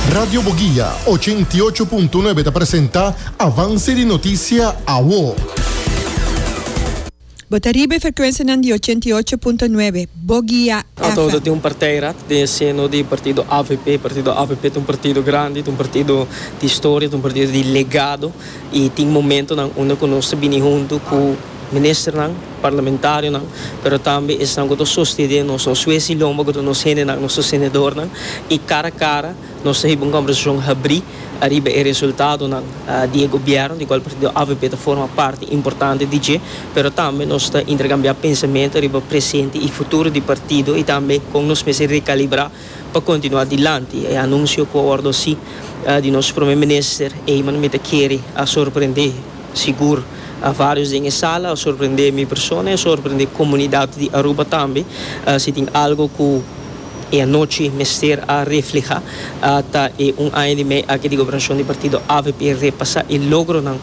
Radio Boguia, ochenta i ocho punto nuebe ta presenta avanse di notisia awo. Bo ta riba e frekuensianan di ochenta i ocho punto nuebe, Boguia FM. Ato ta tin un parteirat den e seno di partido avp. Partido avp ta un partido grandi, ta un partido di historia, ta un partido di legado, i tin momentonan unda ku nos ta bini huntu ku. Ministernan, parlamentarionan, pero tambe esnan ku ta sostedé nos, nos wesi lomba ku ta nos hendenan, nos sostenedornan, i kara a kara nos ta hiba un kombersashon habrí ariba e resultadonan di e gobièrnu, di kual partido avp ta forma parti importante di dje, pero tambe nos ta interkambiá pensamentu ariba presente i futuro di partido i tambe kon nos mester rekalibrá pa kontinuá dilanti. E anunsio ku a wòrdu hasi di nos Prome Minister, ey mano mi ta kere a sorprendé. Sigur a varios den e sala a sorprende mi persona y a sorprende comunidad di Aruba tambe. Si tin algo cu e anochi mester a refleha ta e un aña di mei aki di gobernacion di partido avp repasa e logronan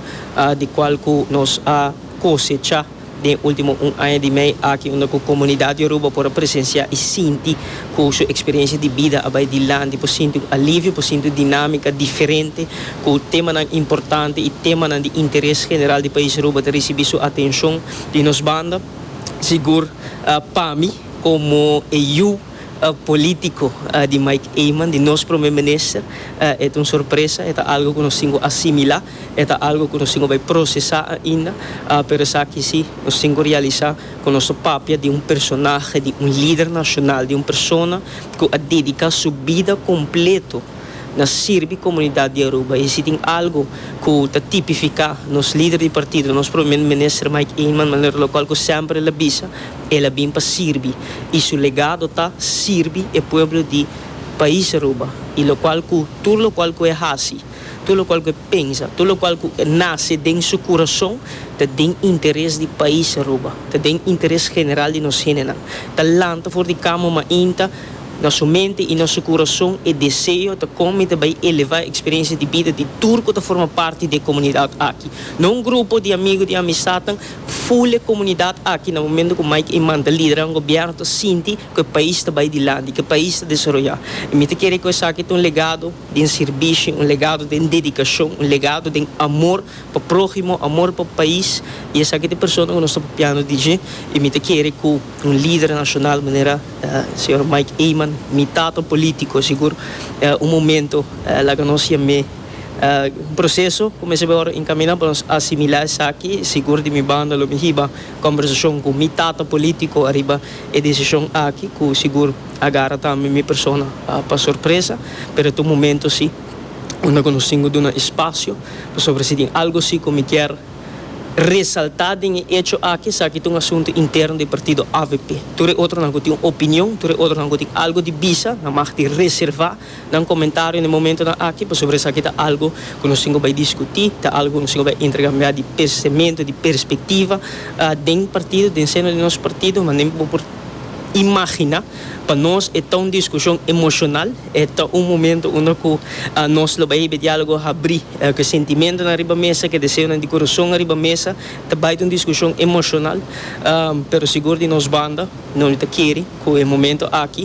di cual cu nos a cosecha. Den ultimo un aña di mei aki unda ku komunidat Yoruba por a presensiá i sinti ku su eksperiensia di bida a bai dilanti, por sinti un alivio, por sinti un dinámika diferente, ku temanan importante i temanan di interes general di pais Aruba ta risibí su atenshon di nos banda. Sigur pa mi komo e yu polítiko di Mike Eman, di nos Prome Minister, e ta un sorpresa, e ta algu ku nos tin ku asimilá. E ta algo ku nos tin ku bai prosesá ainda, pero esaki si, nos tin ku realisá ku nos ta papia di un personahe, di un lider nashonal, di un persona ku a dediká su bida kompletu na sirbi komunidat di Aruba. I si tin algu ku ta tipifiká nos lider di partido, nos Prome Minister Mike Eman, manera lokual ku semper el a bisa, el a bin pa sirbi i su legado ta sirbi e pueblo di pais Aruba i lokual ku tur lokual ku e hasi. Tur lokual ku e pensa, tur lokual ku e nase den su kurason, ta den interes di pais Aruba, ta den interes general di nos hendenan. Ta lanta for di kama mainta na su mente i na su kurason e deseo ta kon mi ta bai elevá e eksperensia di bida di tur ku ta forma parti di e komunidat aki. No un grupo di amigu, di amistadnan, ful e komunidat aki na momentu ku Mike Eman ta liderá un gobièrnu ta sinti ku e pais ta bai dilanti, ku e pais ta desaroyá. I mi ta kere ku esaki ta un legado. den sirbishi, un legado den dedikashon, un legado den amor pa próhimo, amor pa pais, i esaki ta e persona ku nos ta papiando di dje, i mi ta kere ku un lider nashonal manera señor Mike Eman, mi tata polítiko sigur un momento laga nos yam'é un proseso kumins'é bai ora enkaminá pa nos asimilá esaki, sigur di mi banda lo mi hiba kòmbersashon ku mi tata polítiko ariba e desishon aki ku sigur. A gara tambe mi persona pa sorpresa, pero ta un momento si unda cu nos tin cu duna espacio, pasobra si tin algo si cu mi kier resalta den e hecho aki, esaki ta un asunto interno di partido avp. Tur e otronan cu tin un opinion, tur e otronan cu tin algo di bisa, nan mag di reserva. Nan komentario den momentonan aki pasobra esaki ta algu ku nos tin ku bai diskutí, ta algu ku nos tin ku bai interkambiá di pensementu, di perspektiva den partido, den seno di nos partido. Manera bo por imaginá, pa nos e ta un diskushon emoshonal, e ta un momentu unda ku nos lo bai hebe diálogo habrí, ku e sentimentunan riba mesa, ku e deseonan di kurason riba mesa. Ta bai ta un diskushon emoshonal, pero sigur di nos banda, nos no ta kere ku e momentu aki,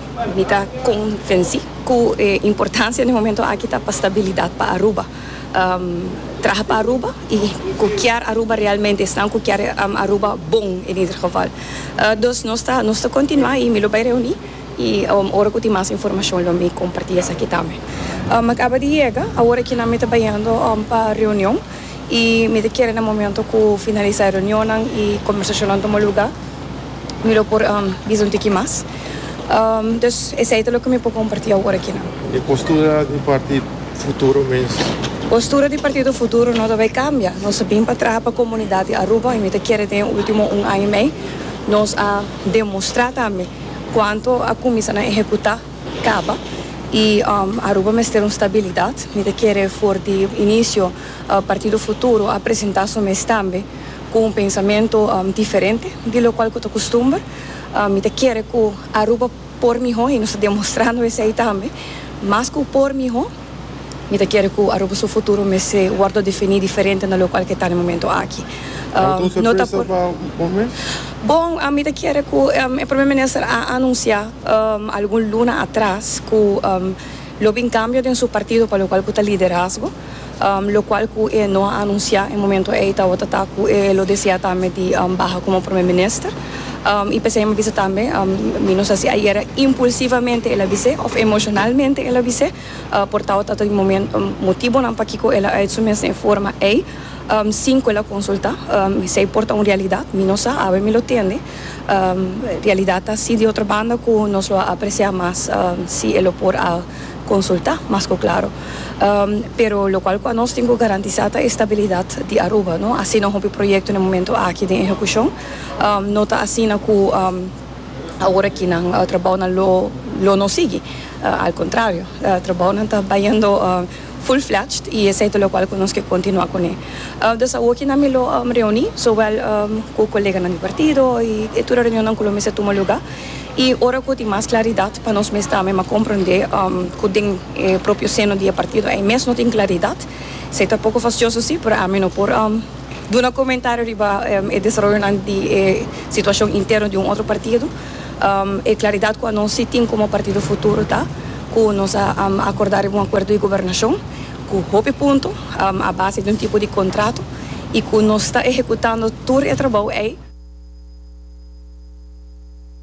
Mi ta konvensí ku e importansia den momentu aki ta pa stabilidat pa Aruba. Traha pa Aruba i ku kier Aruba realmente, esnan ku kier Aruba bon en ieder geval. Dus nos ta nos ta kontinuá i mi lo bai reuní i ora ku tin mas informashon lo mi kompartí esaki tambe. Mi a kaba di yega, awor aki nan mi ta bayendo pa reunion. i mi ta kere na momento ku finalisa e reunionnan i kombersashonnan tuma luga mi lo por bisa un tiki mas. Dus esei ta loke mi por komparti awor akinan. E postura di partit futuro mes? Postura di partito futuro no ta bai kambia. Nos a bin pa traha pa komunidat di Aruba i mi ta kere den e ultimo un aña i mei nos a demostrá tambe kuantu a kuminsá na ehekutá. Caba, y Aruba mester un stabilidad. Mi ta kere for di inicio Partido Futuro a presenta su mes tambe cu un pensamento diferente di locual cu ta custumber. Mi ta kere cu Aruba por miho y nos ta demostrando esey tambe, mas cu por miho. Mi ta kere ku Aruba su futuro mester wòrdu definí diferente na loku alke ta den momentu aki. No ta por. Bon, mi ta kere ku e Prome Minister a anunsiá algun luna atras ku lo bin kambio den su partido pa lokual ku ta liderazgo, lokual ku e no a anunsiá e momentu ei tabata ta ku e lo deseá tambe di baha komo Prome Minister. Um, y p'esei mi bisa tambe, um, mi no sa si ayer impulsivamente el a bis'e of emocionalmente el a bis'e, uh, por tao tato di momento, um, motibonan pa kiko el a uit su mes den e forma ei, um, sin ku el a konsultá. Um, esei por ta un realidad, mi no sa, awe mi lo tende. Um, realidad ta así di otro banda ku nos lo a apresiá mas, um, si el lo por a konsultá mas ku klaro. Um, pero lokual ku anos tin ku garantisá ta e stabilidad di Aruba, no asina hopi proyekto den e momento aki den ehekushon. Um, no ta asina cu, um, ahora ki nan uh, trabounan lo, lo no sigui. Uh, al contrario, uh, trabounan ta bayendo uh, full fledged y esey ta locual cu nos ke continua cune. Uh, dus awor ki nan mi lo um, reuni, zowel um, cu coleganan di partido y e tur e reunionnan cu lo mester tuma lugar. Y ora cu tin mas claridad pa nos mes tambe, m'a comprende um, cu den e propio seno di e partido ey mes no tin claridad. Sey ta poco fastioso si, pero ami no por, um, Duna comentario riba e desaroyonan di e situacion interno di un otro partido, e claridad cu anos si tin como partido futuro ta cu nos a acorda riba un acuerdo di gobernacion cu hopi punto a base di un tipo di contrato y cu nos ta ehecutando tur e trabao ey.